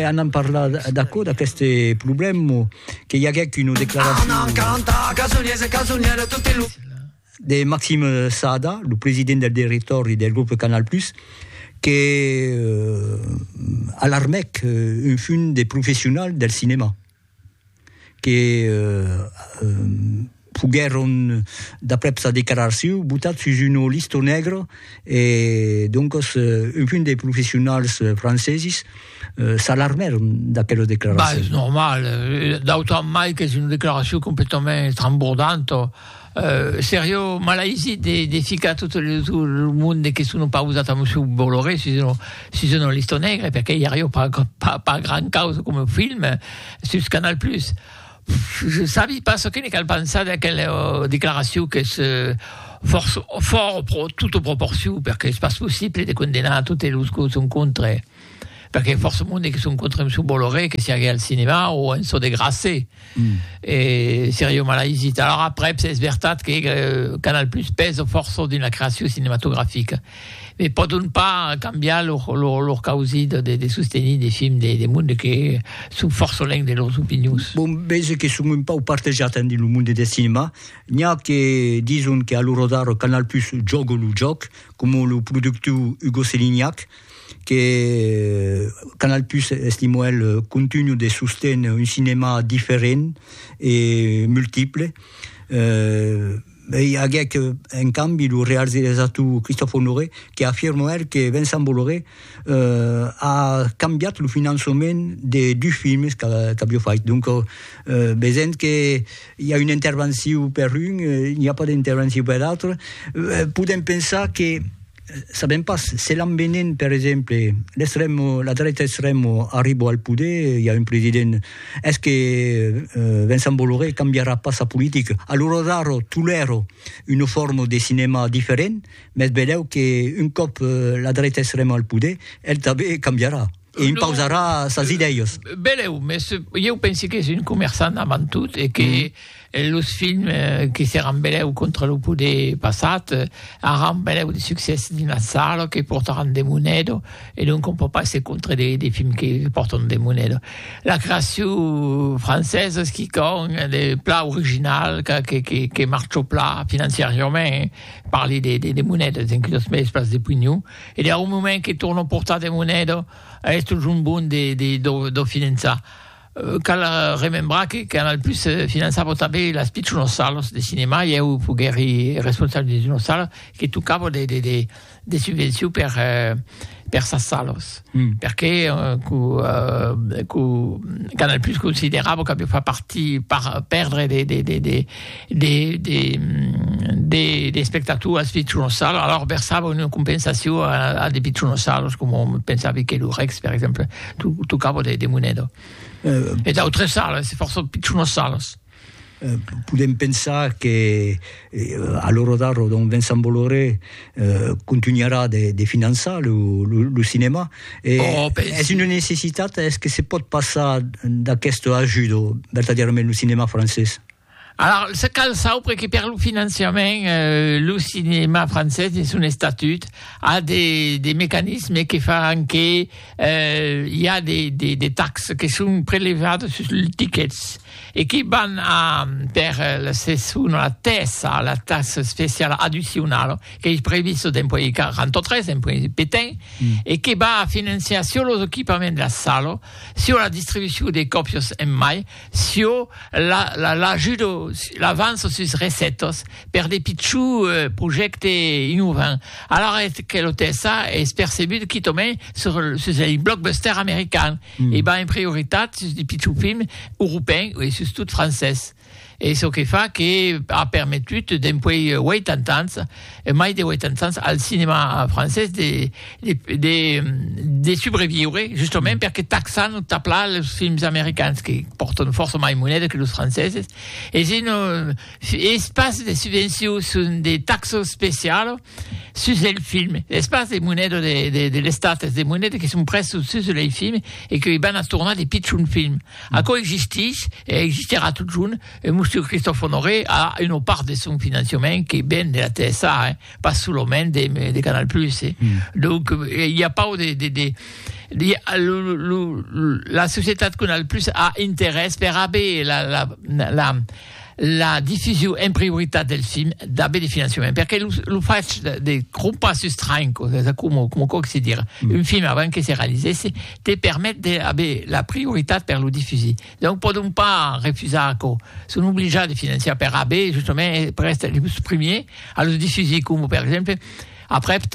Anam parlar d'aquò, d'aquest problèma que i aguèc una declaracion de Maxime Saada, lo president del directòri del grup Canal Plus, que alarmèc un fum de professionals del cinèma. que foguèron, d'aprèp sa declaracion, botats sus una lista negra e doncas algun de professionals francesis s'alarmèron d'aquela declaracion. Bah, es normal, d'autant mai qu'es una declaracion completament estrambordanta. Serio malaisit de ficar tot lo monde que sono pausat amb su Bolloré sus una liston negra, perque i ario pas gran causa coma film sus Canal Plus. Je sabi pas çò que ne cal pensar d'aquela declaracion qu'es fòrt pro, tota proporcion, perque es pas possible de condenar totes los que son contra. Perque i a fòrça monde que son contra Msou Bolloré que siague al cinema o en çò de Grasset. Mm. E seria un malaisit. Alors après, es vertat que euh, Canal Plus pèsa fòrça dins la creacion cinematografica. Me pòdon pas cambiar lor, lor, lor causi de, de, de sostenir de films de, de monde que son fòrça lèng de lors opinions. Bon, veja que son un pau partejat en dins lo monde de cinema. N'hi a que dison que a lo rodar Canal Plus jòga lo jòc, coma lo productor Hugo Selignac, que Canal Plus estimo el continu de sostener un cinema diferent e multiple e i aguec en cambi lo realizator Christophe Honoré que afirma er que Vincent Bolloré a cambiat lo finançament de dus films qu'avió fait donc vesent que i a una intervencion per un i a pas d'intervencion per l'autre podem pensar que Sabem pas, se l'envenen per exemple, l'extremo, la dreta extremo arribo al poder, i a un president, es que Vincent Bolloré cambiarà pas sa politica? Alura daro tolèro una forma de cinema diferent, mes velèu que un còp la dreta extrema al poder, el tanben cambiarà. E impausarà sas idèias. Belèu, mès ieu pensi qu'es un comerçant avant tot e que los films que seràn belèu contra lo poder passat aràn belèu de succès dins las salas, que portaràn de moneda e donc on pòt pas èsser contra de films que pòrtan de moneda. La creacion francesa es quicòm de plan original que marcha plan financiariament, parli de monedas, enquia los mèdies pas de pugnon. E deu moment que torno portar de moneda a esto junt bon de de do do finançar. Cal remembrar que Canal Plus finançava tanben las pichonas salas de cinema e eu foguèri responsable de d'una sala que tocava de de de de subvencions per per sas salas. Perque co co Canal Plus considerava qu'aviá fa partir par perdre de de de de de de de de espectators pitronossalos alors versava una compensacion a, a de pitronossalos como pensavi que lo Rex per exemple tu tocava de, de moneda euh, e d'autres salas força pitronossalos Eh, podem pensar que eh, a l'hora d'ara don Vincent Bolloré eh, continuarà de, de finançar lo, lo, lo cinema e oh, pensi. és una necessitat és que se pot passar d'aquest ajudo vertadièrament lo cinema francés Alors, se cal saupre que per lo financiament, lo cinèma francés de son estatut a de, de mecanismes que fan que i a de, de, de taxes que son prelevades sus los tickets e que van a, per la seson, la TSA, a la taxa especiala addicionala, qu'ei prevista dens puèi 43, dens puèi petain, e que va a financiar çò los equipaments de la sala, çò la distribucion de còpias en mai, Sio l'ajudo, l'avanço sus recettas per de pichó projècte innovant, alara eth que lo TSA es percebut quitament sus ei blockbuster american e va en prioritat sus de pichó film europèn e sustot francés. Es çò que fa que a permetut dempuèi 80 ans e mai de 80 ans al cinèma francés de, de, de, de subreviure, justament mm. perque taxan o tapla los films americans que portan força mai moneda que los franceses, e si no, es pas de subvenció, son de taxo especial sus el film. Es pas de moneda de, de, de l'estat, es de moneda que son presos sus el film e que van a tornar de pitjun film. Mm. Aquò existix, e existirà tot junt, E Monsieur Christophe Honoré a una part de son financiament que ven de la TSA, hein, pas solament de, de Canal Plus. Eh. Mm. Donc, eh, il y a pas de... de, de, de lo, lo, lo, la societat Canal Plus a interès per haver la, la, la, la diffusion en prioritat del film d'haver de financiament. Perquè lo, lo faig de, de crompar sus tranco, com, com, com se dire, mm. un film avant que se realisesse, te permet d'haver la prioritat per lo diffuser. Donc pòdon pas refusar aquò, son oblijats de financiar per AB justament e per èster los primiers a los difusir coma per exemple aprèp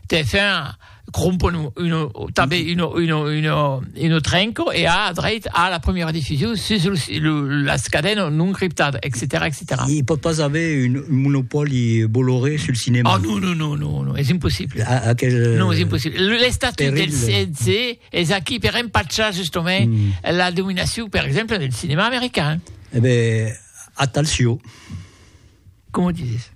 TF1 crompon una tanben una una una una trenco e a dreit a la primièra difusion sus los las cadenas non criptadas etcetèra etcetèra. I pòt pas aver un monopòli Bolloré sul cinèma? Ah non non non non non, es impossible. Aquel. Non es impossible. L'estatuts del CNC Es aquí per empachar justomai la dominacion, per exemple, del cinema american. E ben, atalcion! Coma o dizes?